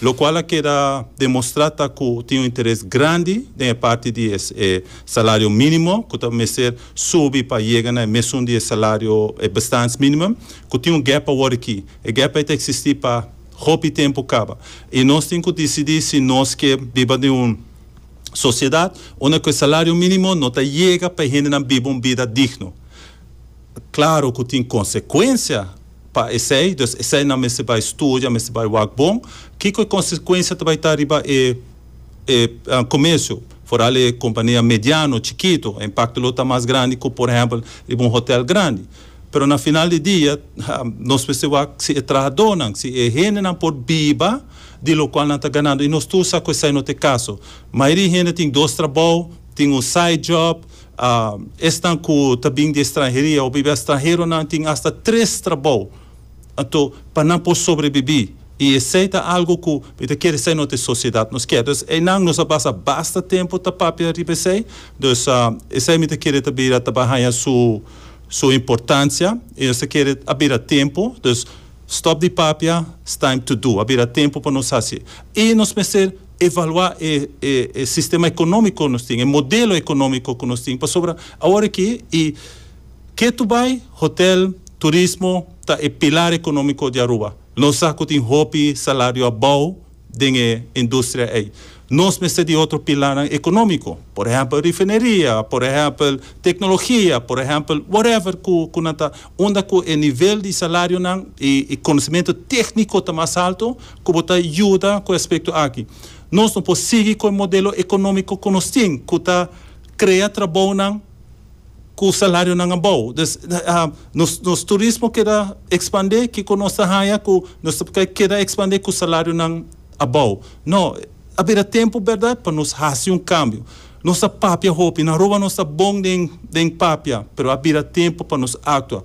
Locual a keda demostrá ta cu tin un interes grandi den e parti di e salario minimo cu ta mester subi pa yega na e mesun di e salario, e bestaansminimum, cu tin un gap awor aki. E gap ei ta existi pa hopi tempu caba i nos tin cu dicidi si nos ke biba den un sociedad unda cu e salario minimo no ta yega pa e hendenan biba un bida digno. Claro cu tin consecuencia. Pa esei, dus esei nan mester bai studia, mester bai wak bon. Kiko e konsekuensia ta bai ta riba e e komersio, foral e kompania mediano, chikitu? E impakto lo ta mas grandi ku por ehèmpel riba un hotèl grandi. Pero na final di dia nos mester wak si e trahadónan, si e hendenan por biba di lokual nan ta ganando. I nos tur sa ku esei no ta e kaso. Mayoria hende tin dos trabou, tin un side job. Esnan ku ta bin di estranheria hopi bia stranheronan tin asta tres trabou. Anto pa nan por sobrebibí i esei ta algu ku mi ta kere sa i no ta e sosiedat nos kier. Dus einan nos a basa basta tempu ta papia riba esei. Dus esei mi ta kere ta bira ta ba haña su su importansia i nos ta kere a bira tempu. Dus stop di papia, it's time to do. A bira tempu pa nos hasi e nos mester. evaluá e e sistema ekonómiko ku nos tin, e modelo ekonómiko ku nos tin, pasobra awor aki i ke tu bai, hotèl, turismo ta e pilar ekonómiko di Aruba. Nos sa ku tin hopi salario a bou den e industria ei. Nos mester di otro pilarnan ekonómiko, por ehèmpel rifineria, por ehèmpel teknologia, por ehèmpel whatever ku ku nan ta unda ku e nivel di salarionan i konosementu tékniko ta mas alto, ku bo ta yuda ku e aspekto aki. Nos no por sigui ku e modelo ekonómiko ku nos tin, ku ta krea trabounan ku salarionan abou. Dus, nos nos turismo keda ekspandé, kiko nos ta haña ku nos ta keda ekspandé ku salarionan abou? No, a bira tempu bèrdat pa nos hasi un kambio. Nos a papia hopi, nan roba nos ta bon den papia, pero a bira tempu pa nos aktua.